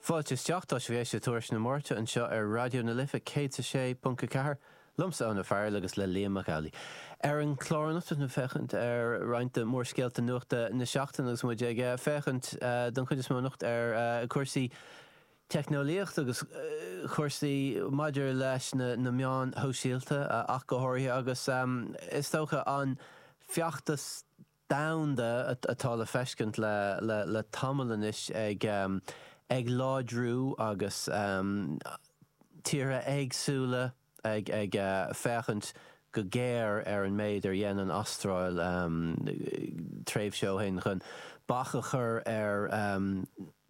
Fáilte isteach, tá sibh ag éisteacht le Tuairisc na Máirte anseo ar Raidió na Life 106.4 liomsa Eoin Ó Fearghail agus le Liam Mac Amhlaigh. Ar an chlár anocht tá muid ag féachaint ar roinnt de mhórscéalta nuachta na seachtaine agus muid ag féachaint don chuid is mó anocht ar chúrsaí teicneolaíochta agus cúrsaí maidir leis na meáin shóisialta ach go háirithe agus is dócha an feachtas domhanda atá le feiscint le tamall anois ag láidriú agus tíortha éagsúla ag féachaint go géar ar an méid ar dhein an Astráil tréimhse ó shin chun bac a chur ar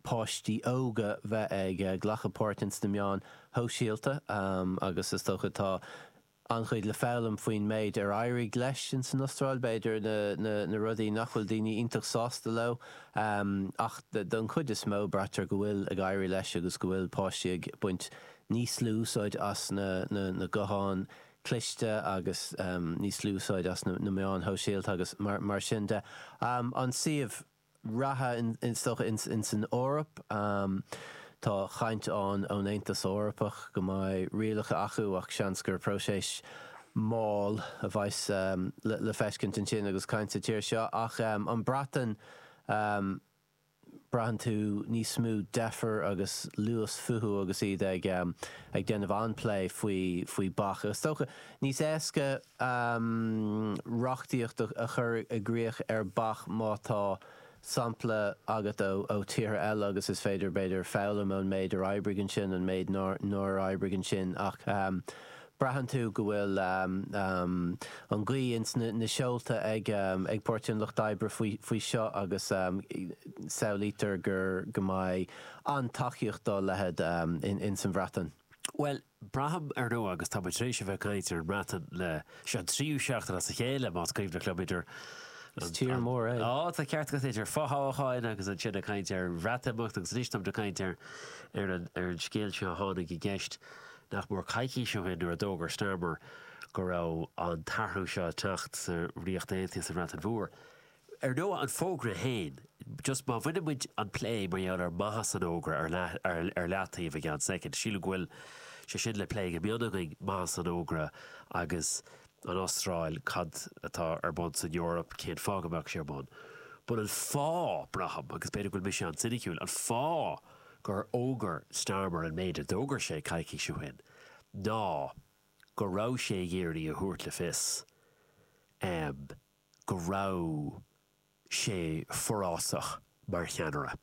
pháistí óga bheith ag glacadh páirt ins na meáin shóisialta agus is dócha tá an-chuid le foghlaim faoin méid ar éirigh leis ins an Astráil, b'fhéidir na rudaí nach bhfuil daoine iontach sásta leo, ach don chuid is mó braitear go bhfuil ag éirí leis agus go bhfuil páistí ag baint níos lú úsáid as na gutháin chliste agus níos lú úsáid as na meáin shóisialta agus mar sin de. An suíomh. reatha is dócha ins an Eoraip. Tá caint ann ón Aontas Eorpach go mbeidh rialacha acu ach seans gur próiseas mall a bheas le feiscint ansin agus caint sa tír seo. Ach an Breatain, braitheann tú níos mó deifir agus luas fúthu agus iad ag déanamh an-plé faoi bac. Is dócha Níos éasca reachtaíocht a chur i gcrích ar bac má tá sampla agat ó tíortha eile agus is féidir, b'fhéidir, foghlaim ón méid ar oibrigh ansin, an méid nár oibrigh ansin ach braitheann tú go bhfuil an ghaoth ins na seolta ag Páirtí an Lucht Oibre faoi seo agus samhlaítear go mbeidh an-tacaíocht dá leithéid ins an Bhreatain. Bhuel, braithim, ar ndóigh, agus tá muid tar éis a bheith ag caint ar an mBreatain le, seo an tríú seachtain as a chéile, más cuimhin liom, idir, Is tír mór é. Á, tá ceart agat, idir fothoghcháin agus ansin ag caint ar an Bhreatimeacht agus anois tá muid ag caint ar an scéal seo a tháinig i gceist nach mór coicís ó shin nuair a d'fhógair Starmer go raibh an t-athrú seo ag teacht sa Ríocht Aontaithe, sa Bhreatain Mhór. Ar ndóigh, an fógra féin, just má bhaineann muid an plé mar gheall ar mhaitheas an fhógra ar leataobh go ceann soicind, sílim go bhfuil sé sin le plé go mion againn, maitheas an fhógra agus an Astráil, cad atá ar bun san Eoraip, cén fáth go mbeadh sé ar bun. But an fáth, braithim, agus b'fhéidir go bhfuil mise an-soiniciúil, an fáth gur fhógair Starmer an méid a d'fhógair sé coicís ó shin ná go raibh sé ag iarraidh a thabhairt le fios, go raibh sé forásach mar cheannaire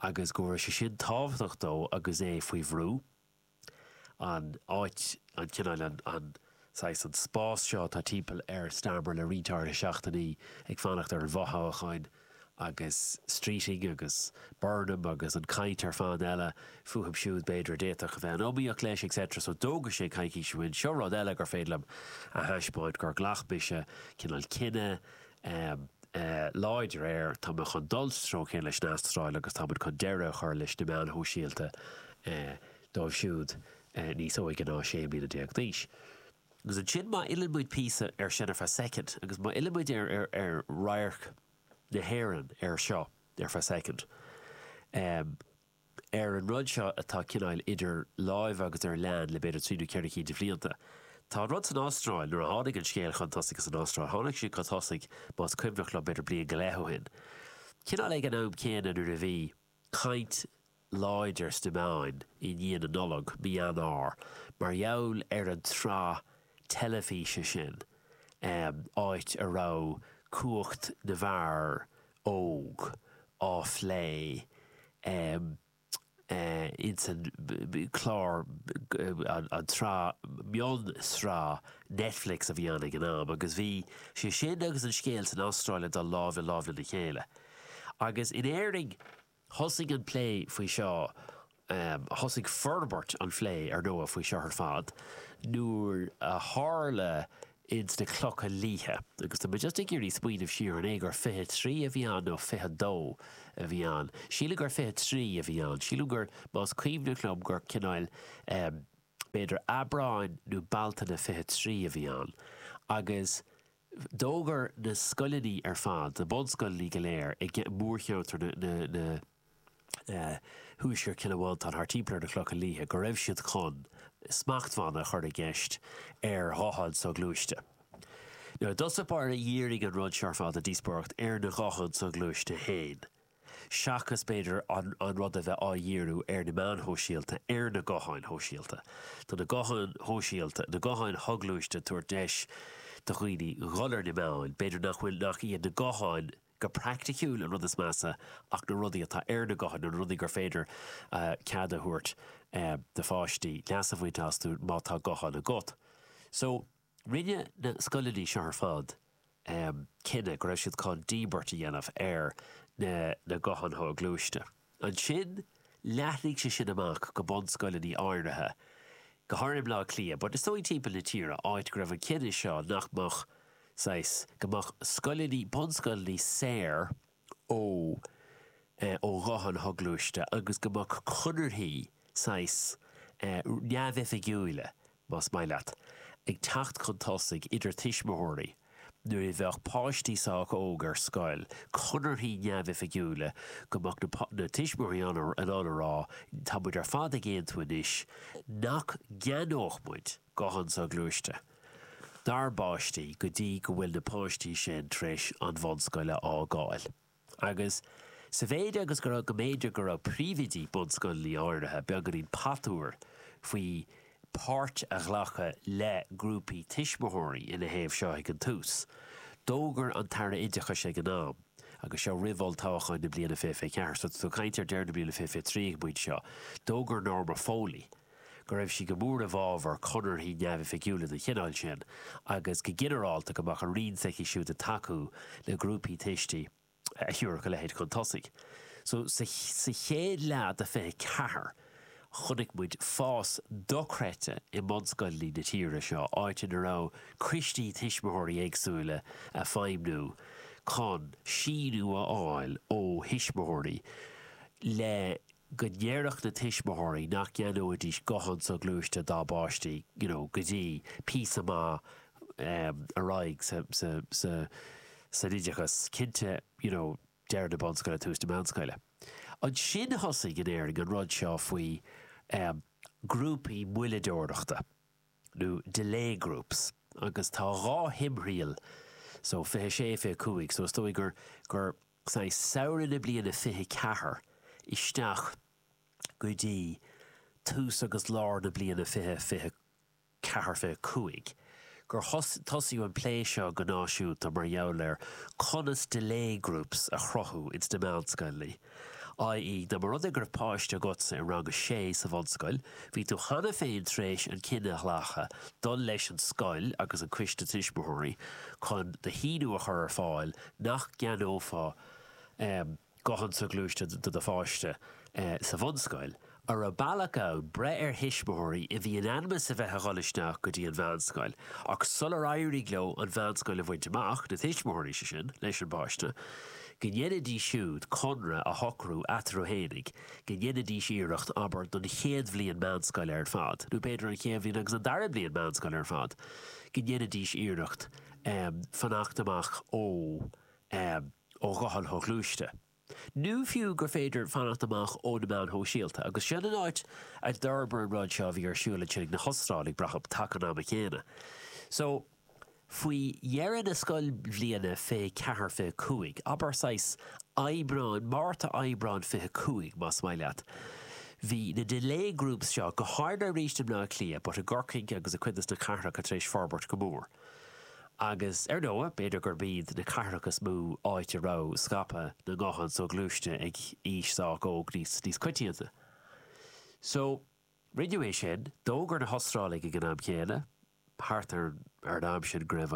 agus go raibh sé sin tábhachtach dó agus é faoi bhrú, an áit, an cineál, an saghas, an spás seo atá timpeall ar Starmer le roinnt áirithe seachtainí ag fanacht ar an bhfothoghchán. agus Streeting agus Burnham agus an chaint ar fad eile fúthu siúd, b'fhéidir, a d'fhéadfadh a bheith in iomaíocht leis, et cetera. So d'fhógair sé coicís ó shin, seo rud eile gur féidir liom a thaispeáint gur ghlac mise cineál cinneadh láidir air, tá mé chun dul sa treo céanna leis an Astráil agus tá muid chun deireadh a chur leis na meáin shóisialta dóibh siúd níos óige ná 16 bliana d'aois. Agus ansin má fhilleann muid píosa ar sin ar feadh soicind, agus má fhilleann muid ar radharc na hÉireann air seo ar feadh soicind, ar an rud seo atá cineál idir láimhe agus ar lean le b'fhéidir trí nó ceithre cinn de bhlianta. Tá an rud san Astráil, nuair a tháinig an scéal chun tosaigh san Astráil, tháinig sé chun tosaigh, más cuimhneach liom, b'fhéidir bliain go leith ó shin, cineál ag an am céanna nuair a bhí, caint láidir sna meáin i ndiaidh na Nollag, mí Eanáir, mar gheall ar an tsraith teilifíse sin, áit a raibh cumhacht na bhfear óg á phlé ins an chlár, an tsraith, mion-sraith Netflix a bhí ann ag an am, agus bhí sé sin agus an scéal san Astráil ag dul lámh i lámh lena chéile. Agus in Éirinn, thosaigh an plé faoi seo, thosaigh forbairt an phlé, ar ndóigh, faoi seo ar fad, nuair a tharla ins na Clocha Liatha. Agus tá mé just ag iarraidh smaoineamh siar, an é gur fiche trí a bhí ann nó fiche dó a bhí ann? Sílim gur fiche trí a bhí ann. Sílim gur, más cuimhneach liom, gur cineál, b'fhéidir Aibreáin nó Bealtaine fiche trí a bhí ann. Agus D'fhógair na scoileanna ar fad, na bunscoileanna go léir i mórcheantar na Thuaisceart Cille Mhantáin thart timpeall ar na Clocha Liatha, go raibh siad chun smachtbhanna a chur i gceist ar ghutháin soghluaiste. Nuair a thosaigh, b'fhéidir, dhírigh an rud seo ar fad a díospóireacht ar na gutháin soghluaiste féin. seachas b'fhéidir an rud a bheith á dhíriú ar na meáin shóisialta, ar na gutháin shóisialta. Tá na gutháin shóisialta, na gutháin shoghluaiste ag tabhairt deis do dhaoine dhul ar na meáin, b'fhéidir nach bhfuil, nach iad na gutháin go praiticiúil an rud is measa ach na rudaí atá ar na gutháin, na rudaí gur féidir cead a thabhairt do pháistí leas a bhaint astu má tá guthán agat. So. Rinne na scoileanna seo ar fad cinneadh go raibh siad chun díbirt a dhéanamh ar na gutháin shoghluaiste. Ansin leathnaigh sé sin amach go bunscoileanna áirithe, go háirithe i mBleá Cliath, but is dóigh timpeall na tíre, áit go raibh an cinneadh seo nach mbeadh, saghas, go mbeadh scoileanna, bunscoileanna saor, ó eh, ó ghutháin shoghluaiste agus go mbeadh conarthaí saghas, eh, neamhoifigiúila, más maith leat, ag teacht chun tosaigh idir tuismitheoirí nuair a bheadh páistí sách óg ar scoil, conarthaí neamhoifigiúila go mbeadh na, na tuismitheoirí ann a, in ann a rá, tá muid ar fad ag aontú anois nach gceannódh muid guthán soghluaiste. dár bpáistí go dtí go bhfuil na páistí sin tar éis an bhunscoil a fhágáil. Agus sa mhéid agus go raibh, go mb'fhéidir go raibh príomhoidí bunscoileanna áirithe beagáinín patuar faoi páirt a ghlacadh le grúpaí tuismitheoirí ina thaobh seo ag an tús, d'fhógair an tAire Oideachais ag an am, agus seo roimh olltoghchán na bliana fiche, fiche ceathair, so tá tú ag caint ar deireadh na bliana fiche, fiche trí ag an bpointe seo, d'fhógair Norma Foley, go raibh sí go mór i bhfabhar conarthaí neamhoifigiúla den chineál sin agus, go ginearálta, go mbeadh an Roinn s'aici siúd ag tacú le grúpaí tuistí a thabharfadh a leithéid chun tosaigh. So, sa chéad leath de 24, chonaic muid fás dochreidte i mbunscoileanna na tíre seo, áit ina raibh coistí tuismitheoirí éagsúla ag feidhmniú chun síniú a fháil ó thuismitheoirí le go ndéarfadh na tuismitheoirí nach gceannóidís guthán soghluaiste dá bpáistí you know go dtí píosa maith em ar aghaidh sa sa sa san oideachas cinnte you know deireadh na bunscoile tús na meánscoile. Ansin thosaigh in Éirinn an rud seo faoi em grúpaí moilleadóireachta nó delay groups agus tá dhá thimthriall so fiche sé fiche cúig so is dóigh gur gur I samhradh na bliana fiche ceathair isteach go dtí tús agus lár na bliana fiche, fiche ceathair, fiche cúig, gur tosaíodh an plé seo go náisiúnta mar gheall ar conas delay groups a chruthú ins na meánscoileanna, i.e. dá mba rud é go raibh páiste agatsa i rang a sé sa bhunscoil, bhí tú cheana féin tar éis an cinneadh a ghlacadh dul leis an scoil agus an coiste tuismitheoirí chun do shíniú a chur ar fáil nach gceannófá guthán soghluaiste do do pháiste sa bhunscoil, an raibh bealach ann breith ar thuismitheoirí a bhí in ainm is a bheith a dhul isteach go dtí an mheánscoil ach sular éirigh leo an mheánscoil a bhaint amach, na tuismitheoirí sin leis an bpáiste, go ndéanfaidís siúd conradh a shocrú eatarthu fhéinig go ndéanfaidís iarracht, abair, don chéad bhliain meánscoile ar fad, nó b'fhéidir an chéad bhliain agus an dara bliain meánscoile ar fad, go ndéanfaidís iarracht um fanacht amach ó um ó ghutháin shoghluaiste, nó fiú gur féidir fanacht amach ó na meáin shóisialta, agus sin an áit a d'fhorbair an rud seo a bhí ar siúl ansin ag na hOstráiligh, braithim, taca an ama chéanna. So, faoi dheireadh na scoilbhliana, fiche ceathair, fiche cúig, abair, saghas Aibreán, Márta, Aibreán fiche cúig, más maith leat, bhí na delay groups seo, go háirithe arís i mBleá Cliath, but i gCorcaigh agus i cuid de sna cathracha tar éis forbairt go mór. Agus ar ndóigh, b'fhéidir gurb iad na cathracha is mó áit a raibh scaipeadh na nguthán soghluaiste ag aois sách óg níos coitianta. So, rinneadh é sin. D'fhógair na hOstráiligh ag an am chéanna, thart ar ar an am sin, go raibh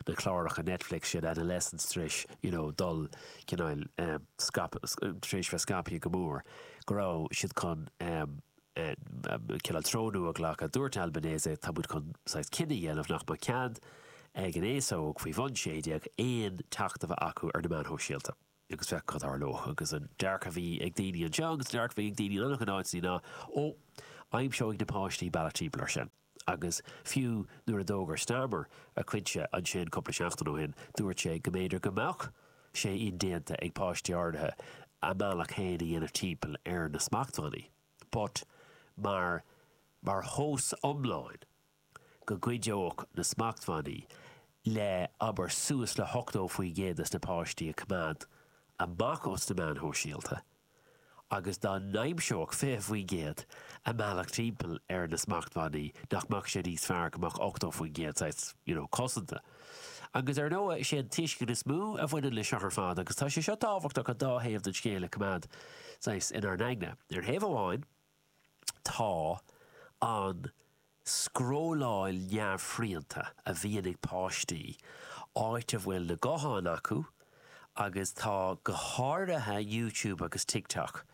na cláracha Netflix sin, Adolescence, tar éis, you know, dul, cineál, eh, scaipeadh, tar éis bheith scaipthe go mór, go raibh siad chun, em, Cineál treo nua a ghlacadh. Dúirt Albanese, tá muid chun saghas cinneadh a dhéanamh nach mbeadh cead ag an aos óg faoi bhun sé déag aon teacht a bheith acu ar na meáin shóisialta. Agus féach cad a tharlóidh. Agus an dearcadh a bhí ag daoine anseo agus an dearcadh a bhí ag daoine in an-chuid áiteanna ná, 'Ó, aimseoidh na páistí bealach timpeall air sin. agus fiú nuair a d'fhógair Starmer a chuid siúd ansin cúpla seachtain ó shin, dúirt sé go mb'fhéidir go mbeadh sé indéanta ag páistí áirithe a mbealach féin a dhéanamh timpeall ar na smachtbhannaí, but mar mar thomhas iomlán go gcuideodh na smachtbhannaí le, abair, suas le hochtó faoin gcéad des na páistí a choimeád amach os na meáin shóisialta. agus dá n-aimseodh 20% a mbealach timpeall ar na smachtbhannaí, nach mbeadh sé níos fearr go mbeadh 80% saghas, you know, cosanta. Agus ar ndóigh, is é an tuiscint is mó a bhaineann leis seo ar fad, agus tá sé seo tábhachtach an dá thaobh den scéal a choimeád saghas inár n-aigne. Ar thaobh amháin, Tá an scrolláil neamhshrianta a bhíonn ag páistí, áit a bhfuil na gutháin acu, agus tá go háirithe YouTube agus TikTok,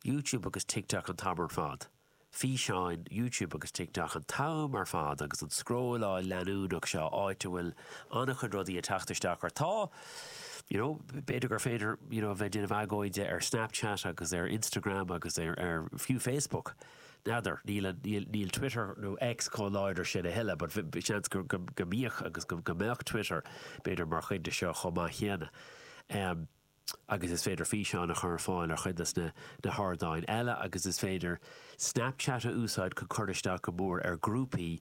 YouTube agus TikTok an t-am ar fad, físeáin, YouTube agus TikTok an t-am ar fad agus an scrolláil leanúnach seo, áit a bhfuil an-chuid rudaí ag teacht isteach ort. Tá. You know, b'fhéidir gur féidir, you know, a bheith ag déanamh agóide ar Snapchat agus ar Instagram agus ar, ar, fiú Facebook. N'fheadar, níl an, níl, níl Twitter nó X chomh láidir sin a thuilleadh, but bhí, bhí seans go, go, go mbíodh agus go, go mbeadh Twitter, b'fhéidir, mar chuid de seo chomh maith céanna. Um, agus is féidir físeáin a chur ar fáil ar chuid de na, na hardáin eile agus is féidir Snapchat a úsáid chun cur isteach go mór ar grúpaí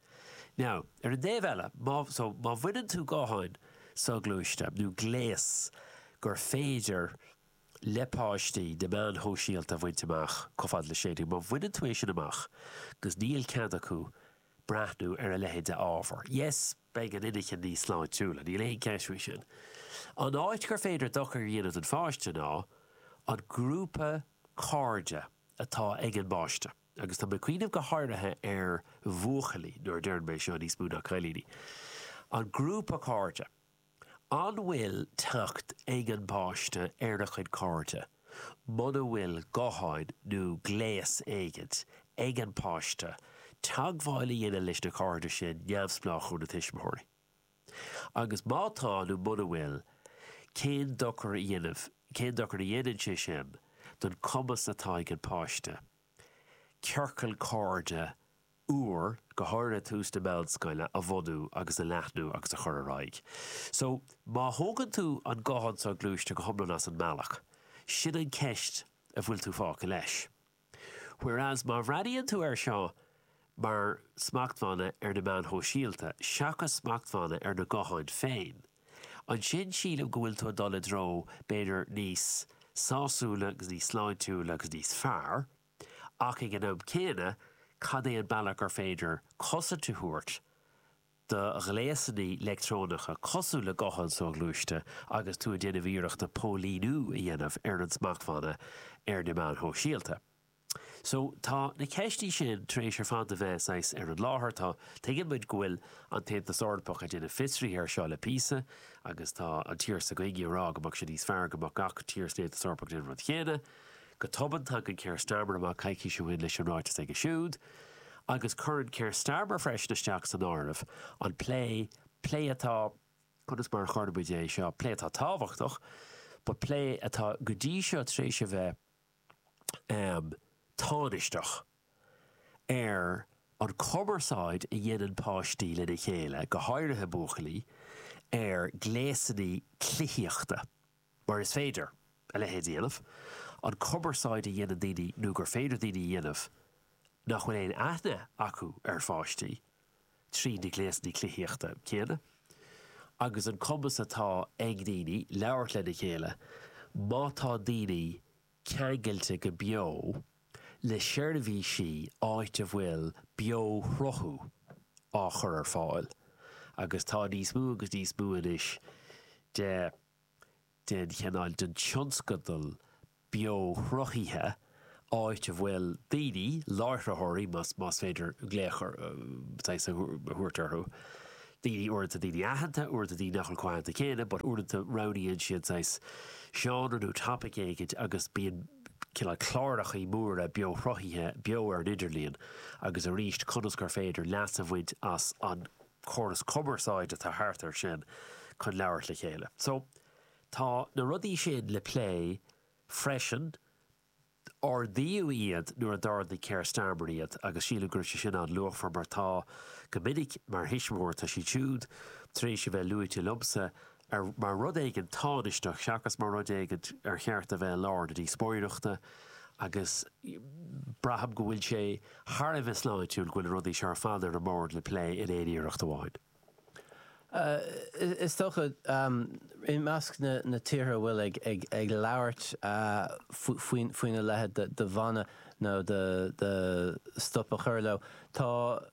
Now, ar an dtaobh eile, má, so, má bhaineann tú gutháin soghluaiste, nó gléas gur féidir le páistí na meán shóisialta a bhaint amach chomh fada le sé déag, má bhaineann tú é sin amach agus níl cead acu breathnú ar a leithéid de ábhar, yes, beidh an inchinn níos sláintiúla, níl aon cheist faoi sin. An áit gur féidir dochar a dhéanamh don pháiste ná an grúpa cairde atá ag an bpáiste. Agus tá mé ag cuimhneamh go háirithe ar bhuachaillí, nuair a deireann mé seo, níos mó ná cailíní. An grúpa cairde. An bhfuil teacht ag an bpáiste ar a chuid cairde muna bhfuil guthán nó gléas éigint ag an bpáiste teagmháil a dhéanamh leis na cairde sin neamhspleách ó na tuismitheoirí? Agus má tá nó muna bhfuil, cén dochar a dhéanamh, cén dochar a dhéanann sé sin don chumas atá ag an páiste ciorcal cairde úr, go háirithe ag tús na meánscoile, a bhunú agus a leathnú agus a chur ar aghaidh? So, má thógann tú an guthán soghluaiste go hiomlán as an mbealach, sin an ceist a bhfuil tú fágtha leis. Whereas má bhreathnaíonn tú air seo mar smachtbhanna ar na meáin shóisialta seachas smachtbhanna ar na gutháin féin, ansin sílim go bhfuil tú ag dul i dtreo b'fhéidir níos sásúla agus níos sláintiúla agus níos fearr, ach ag an am céanna cad é an bealach gur féidir cosaint a thabhairt do ghléasanna leictreonacha, cosúil le gutháin soghluaiste, agus tú ag déanamh iarrachta póilíniú a dhéanamh ar an smachtbhanna ar na meáin shóisialta. So, tá na ceistí sin tar éis ar fad a bheith saghas ar an láthair. Tá, tuigeann muid go bhfuil an tAontas Eorpach ag déanamh fiosruithe air seo le píosa agus tá an tír s'againne ag rá go mbeadh sé níos fearr go mbeadh gach tír san Aontas Eorpach ag déanamh an rud chéanna. Go tobann, tagann Keir Starmer amach coicís ó shin leis an ráiteas aige siúd, agus cuireann Keir Starmer freisin isteach san áireamh an plé, plé atá, conas mar a chuirfeadh muid é seo, plé atá tábhachtach, but plé atá go dtí seo tar éis a bheith tánaisteach, ar an chumarsáid a dhéanann páistí lena chéile, go háirithe buachaillí, ar ghléasanna cluichíochta. mar is féidir a leithéid a dhéanamh, an cumarsáid a dhéanann daoine nó gur féidir daoine a dhéanamh nach bhfuil aon aithne acu ar pháistí, trí na gléasanna cluichíochta céanna, agus an cumas atá ag daoine labhairt lena chéile má tá daoine ceangailte go beo le seirbhísí áit a bhfuil beo-shruthú á chur ar fáil, agus tá níos mó agus níos mó anois de. den chineál den tionscadal beoshruthaithe, áit a bhfuil daoine, láithreoirí, más, más féidir glaoch ar shaghas a thabhairt orthu, daoine, uaireanta daoine aitheanta, uaireanta daoine nach bhfuil chomh haitheanta céanna, but uaireanta roghnaíonn siad saghas seánra nó topic éigin agus bíonn cineál clárachaí móra beoshruthaithe, beo ar an idirlíon, agus arís conas gur féidir leas a bhaint as an córas cumarsáide atá thart ar sin chun labhairt le chéile. So, tá na rudaí sin le plé freisin. Ardaíodh iad nuair a d'ardaigh Keir Starmer iad agus sílim go raibh sé sin an-luachmhar mar tá, go minic, mar thuismitheoir, tá siad siúd tar éis a bheith luaite liomsa mar rud éigin tánaisteach seachas mar rud éigin ar cheart a bheith i lár na díospóireachta agus braithim go bhfuil sé thar a bheith sláintiúil go bhfuil na rudaí seo ar fad ar an mbord le plé in aon iarracht amháin. Is dócha, i measc na tíortha a bhfuil ag labhairt faoina leithéid de bhan nó de stop a chur leo, tá,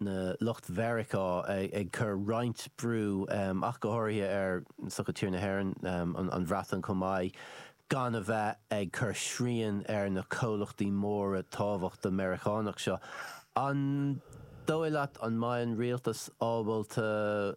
na lucht Mheiriceá ag cur roinnt brú ach go háirithe ar is dócha tír na hÉireann, an Bhreatain chomh maith, gan a bheith ag cur srian ar na comhlachtaí móra tábhachtacha Meiriceánacha seo. An dóigh leat an mbeidh an rialtas ábalta.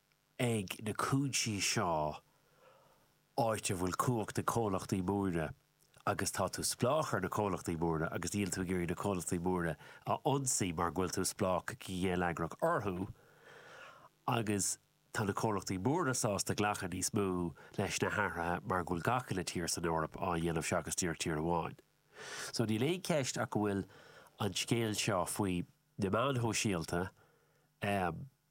ag na cúinsí seo áit a bhfuil cumhacht ag comhlachtaí móra agus tá tú spleách ar na comhlachtaí móra agus níl tú ag iarraidh na comhlachtaí móra a ionsaí mar go bhfuil tú spleách go geilleagrach orthu agus tá na comhlachtaí móra sásta glacadh níos mó leis na hathruithe mar go bhfuil gach uile tír san Eoraip á dhéanamh seachas díreach tír amháin. So níl aon cheist ach go bhfuil an scéal seo faoi na meáin shóisialta, eh,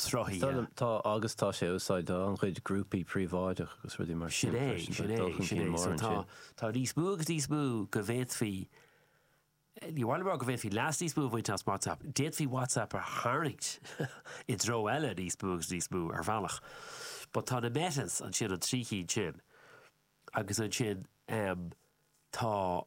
sruthaithe. Tá agus tá sé á úsáid do an-chuid grúpaí príobháideach agus rudaí mar sin freisin. So tá níos mó agus níos mó go bhféadfaí, ní amháin go bhféadfaí leas níos mó a bhaint as WhatsApp, d'fhéadfaí WhatsApp a tharraingt i dtreo eile níos mó agus níos mó ar bhealach. But tá na Metas ansin, an trí chinn sin agus ansin tá,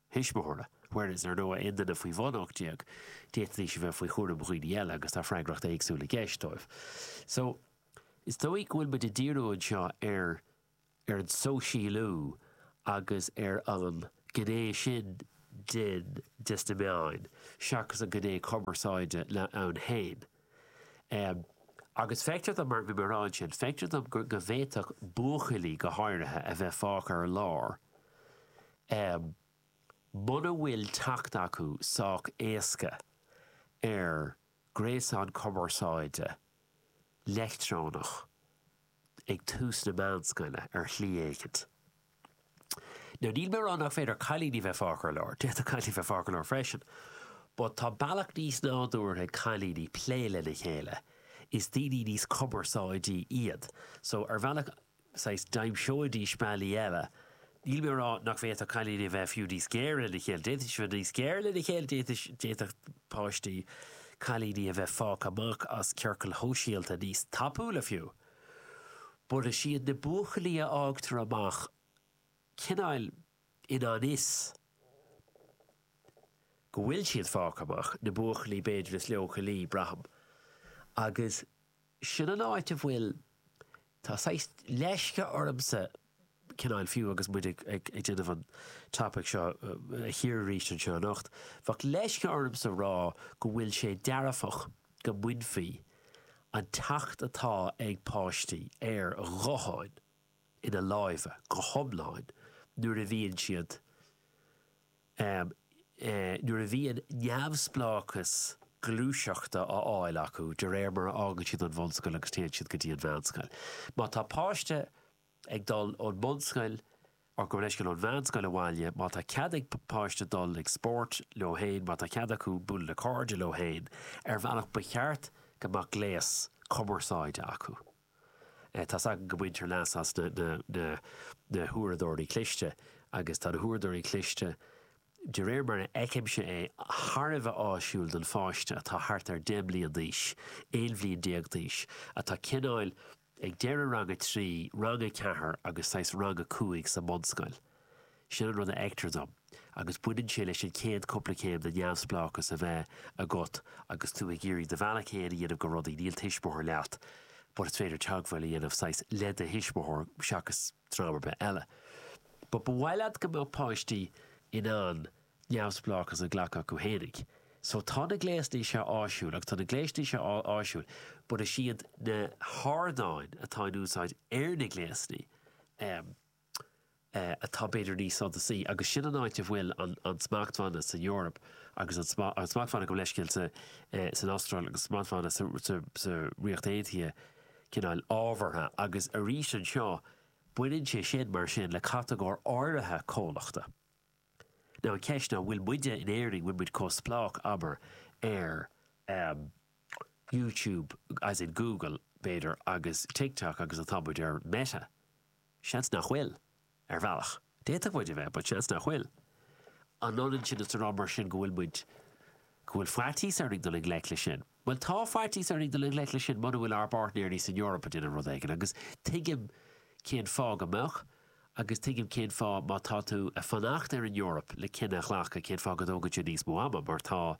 thuismitheora, whereas ar ndóigh aon duine faoi bhun 18, d'fhéadfaidís a bheith faoi chúram dhaoine eile agus tá freagracht éagsúil i gceist dóibh. So, is dóigh go bhfuil muid ag díriú anseo ar ar an sóisialú agus ar an gné sin de de sna meáin seachas an gné cumarsáide ann féin. Agus feictear dom, mar a dúirt mé ansin, feictear dom go bhféadfadh buachaillí go háirithe a bheith fágtha ar lár muna bhfuil teacht acu sách éasca ar ghréasán cumarsáide leictreonach ag tús na meánscoile ar shlí éicint. Now, níl mé ag rá nach féidir cailíní a bheith fágtha ar lár, d'fhéadfadh cailíní a bheith fágtha ar lár freisin, but tá bealach níos nádúrtha ag cailíní plé lena chéile, is daoine níos cumarsáidí iad, so ar bhealach, saghas, d'aimseoidís bealaí eile, níl mé ag rá nach bhféadfadh cailíní a bheith fiú níos géire lena chéile, d'fhéadfaidís a bheith níos géire lena chéile, d'fhéadfaidís, d'fhéadfadh páistí, cailíní a bheith fágtha amach as ciorcail shóisialta níos tapúla fiú. but is iad na buachaillí a fhágtar amach, cineál i ngan fhios go bhfuil siad fágtha amach, na buachaillí b'fhéidir is leochailí, braithim, agus sin an áit a bhfuil, tá saghas leisce ormsa cineáil fiú agus muid ag déanamh an topaic seo a chíoradh arís anseo anocht. Bheadh leisce ormsa rá go bhfuil sé dearfach go mbainfí an teacht atá ag páistí ar ghutháin ina láimhe go hiomlán nuair a bhíonn siad Am nuair a bhíonn neamhspleáchas gluaiseachta á fháil acu de réir mar a fhágann siad an bhunscoil agus téann siad go dtí an mheánscoil. Má tá páiste ag dul ón mbunscoil or gabh mo leithscéal ón mheánscoil abhaile, má tá cead ag páiste dul ag spórt leo féin, má tá cead acu bualadh le cairde leo féin ar bhealach ba cheart go mbeadh gléas cumarsáide acu. Tá's againn go mbaintear leas as na huaireadóirí cliste agus tá na huaireadóirí cliste, de réir mar a fheicimse é, thar a bheith áisiúil don pháiste atá thart ar 10 mbliain d'aois, 11 bhliain d'aois, atá cineáil ag deireadh rang a trí, rang a ceathair agus saghas rang a cúig sa mbunscoil. Sin an rud a fheictear dom, agus baineann sé leis an chéad cúpla céim de neamhspleáchas a bheith agat agus tú ag iarraidh do bhealach fhéin a dhéanamh go rudaí, níl tuismitheoir leat but is féidir teagmháil a dhéanamh saghas le do thuismitheoir seachas dream ar bith eile. But ba mhaith leat go mbeadh páistí in ann neamhspleáchas a ghlacadh chucu fhéinig. So tá na gléasanna seo áisiúil agus tá na gléasanna seo áisiúil but is iad na hardáin atá in úsáid ar na gléasanna, em, atá b'fhéidir níos suntasaí, agus sin an áit a bhfuil an smachtbhanna san Eoraip agus an smachtbhanna, gabh leithscéal, san Astráil agus an smachtbhanna sa Ríocht Aontaithe cineál ábhartha, agus arís anseo baineann sé sin mar sin le catagóir áirithe comhlachta. Now an cheist ná, bhfuil muide in Éirinn, bhfuil muid chomh spleách, abair, ar YouTube, as in Google, b'fhéidir, agus TikTok agus atá muid ar Meta? Seans nach bhfuil. Ar bhealach, d'fhéadfadh muid a bheith, but seans nach bhfuil. An ionann sin is a rá mar sin go bhfuil muid, go bhfuil faitíos orainn dul i ngleic leis sin? Bhuel, tá faitíos orainn dul i ngleic leis sin muna bhfuil ár bpáirtnéirí san Eoraip ag déanamh rud éigin, agus tuigim cén fáth go mbeadh, agus tuigim cén fáth má tá tú ag fanacht ar an Eoraip le cinneadh a ghlacadh cén fáth go dtógann sé níos mó ama, mar tá,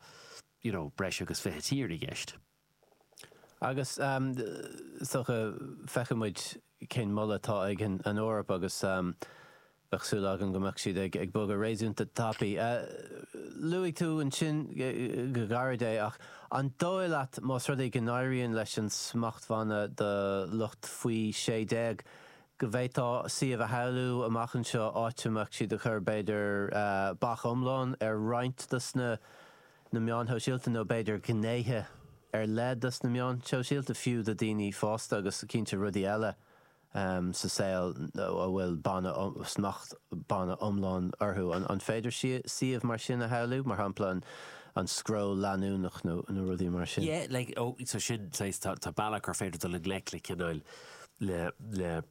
you know, breis agus fiche tír i gceist. Agus is dócha, feicfidh muid cén moladh atá ag an Eoraip agus bheadh súil agam go mbeadh siad ag bogadh réasúnta tapaidh. Luaigh tú ansin go gairid é ach an dóigh leat más rud é go n-éiríonn leis an smachtbhanna do lucht faoi sé déag go bhféadfá suíomh a shamhlú amach anseo áit a mbeadh siad ag cur b'fhéidir bac iomlán ar roinnt dos na na meáin shóisialta nó b'fhéidir gnéithe ar leith dos na meáin shóisialta fiú do daoine fásta agus cinnte rudaí eile sa saol a bhfuil banna, smachtbhanna iomlán orthu. An féidir suíomh mar sin a shamhlú, mar shampla an scroll leanúnach nó rudaí mar sin? Yeah, like, oh, so sin, tá, tá bealach gur féidir dul i ngleic le cineál, le, le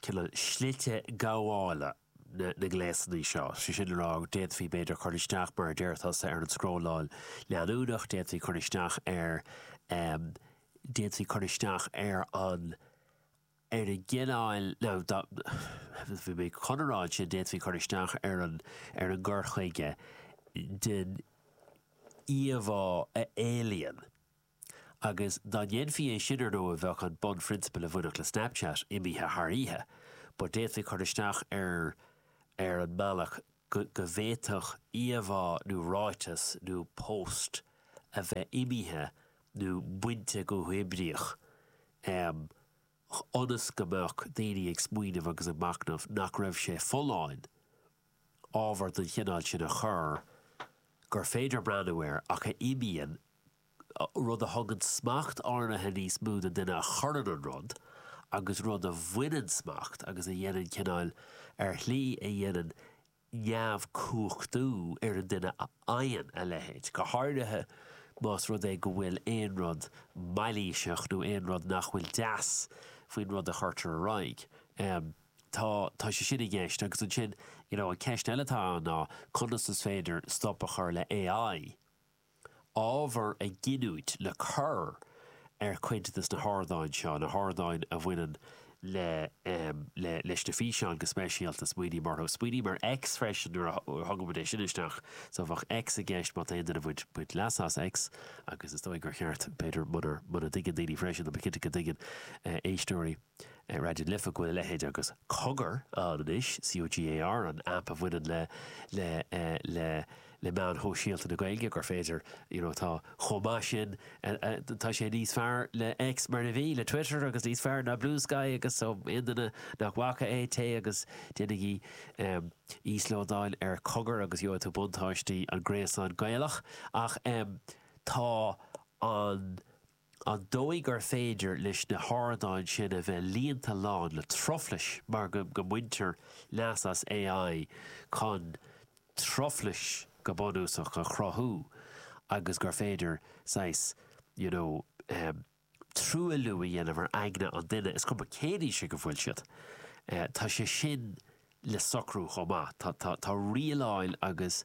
cineál slite gabhála. na ngléasanna seo. Is é sin le rá go d'fhéadfaí, b'fhéidir, cur isteach, mar a deir tusa, ar an scrolláil leanúnach, d'fhéadfaí cur isteach ar, d'fhéadfaí cur isteach ar an, ar an gcineál, céard a bhí mé chun a rá ansin, d'fhéadfaí cur isteach ar an, ar an gcur chuige den íomhá a éalaíonn. Agus dá ndéanfaí é sin ar ndóigh bheadh an bunphrionsabal a bhainfeadh le Snapchat imithe thar oíche. But d'fhéadfaí cur isteach air ar an mbealach go bhféadfadh íomhá nó ráiteas nó post a bheith imithe nó bainte go huathoibríoch ionas go mbeadh daoine ag smaoineamh agus ag machnamh nach raibh sé folláin ábhar den chineál sin a chur gur féidir breathnú air ach a imíonn, rud a thugann smacht áirithe níos mó don duine a chuireann an rud agus rud a bhaineann smacht agus a dhéanann cineál, ar shlí a dhéanann neamhchumhachtú ar an duine a fhaigheann a leithéid, go háirithe más rud é go bhfuil aon rud mailíseach nó aon rud nach bhfuil deas faoin rud a chuirtear ar aghaidh. tá, tá sé sin i gceist agus ansin you know an ceist eile atá ann ná conas is féidir stop a chur le AI ábhar a ghiniúint le cur ar chuid de na hardáin seo, na hardáin a bhaineann le, em, le, leis na físeáin go speisialta, smaoiním orthu, smaoiním ar X freisin nuair a thugadh muid é sin isteach air, so bheadh X i gceist má tá aon duine ag baint, baint leas as X agus is dóigh gur cheart b'fhéidir munar, muna dtuigeann daoine freisin, tá mé cinnte go dtuigeann, eh, éisteoirí. ar Raidió na Life go bhfuil a leithéid agus Cogar ann anois, C-O-G-A-R, an aip a bhaineann le le le le meáin shóisialta na Gaeilge, gur féidir you know tá chomh maith sin tá sé níos fearr le X mar a bhí, le Twitter agus níos fearr ná Bluesky agus so aon duine nach bhfaca é, téigh agus déanaigí íoslódáil ar Cogar agus gheobhaidh tú buntáistí an Gréasáin Gaelach ach tá an an dóigh gur féidir leis na hardáin sin a bheith líonta lán le truflais mar go mbaintear leas as AI chun truflais go bunúsach a chruthú agus gur féidir saghas you know truailliú a dhéanamh ar aigne an duine, is cuma cén aois ag a bhfuil siad. Tá sé sin. le socrú chomh maith. Tá, tá rialáil agus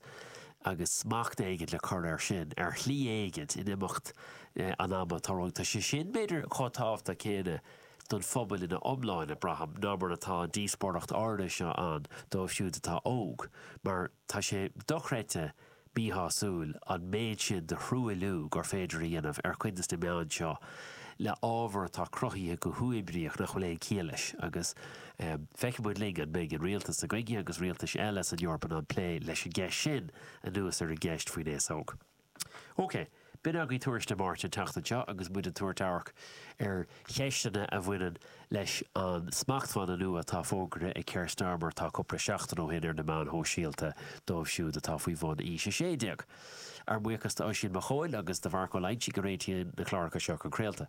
agus smacht éigint le cur air sin, ar shlí éigint, in imeacht an ama. Tá rud, tá sé sin, b'fhéidir, chomh tábhachtach céanna don phobal ina iomláine, braithim, ná mar atá an díospóireacht áirithe seo ann dóibh siúd atá óg, mar, Tá sé dochreidte míshásúil an méid sin de thruailliú gur féidir a dhéanamh ar chuid de na meáin seo le ábhar atá cruthaithe go huathoibríoch nach bhfuil aon chiall leis agus feicfidh muid linn an mbeidh an rialtas sa Ghaeilge agus rialtais eile san Eoraip ag plé leis an gceist sin anuas ar an gceist faoin aos óg. OK. B'in againn Tuairisc na Máirte an tseachtain seo agus muid ag tabhairt amharc ar cheisteanna a bhaineann leis an smachtbhanna nua atá fógartha ag Keir Starmer tá cúpla seachtain ó shin ar na meáin shóisialta dóibh siúd atá faoi bhun aois 16. Ár mbuíochas d'Oisín Mac Chóil agus do Mharc Ó Loingsigh a réitíonn na cláracha seo chun craolta.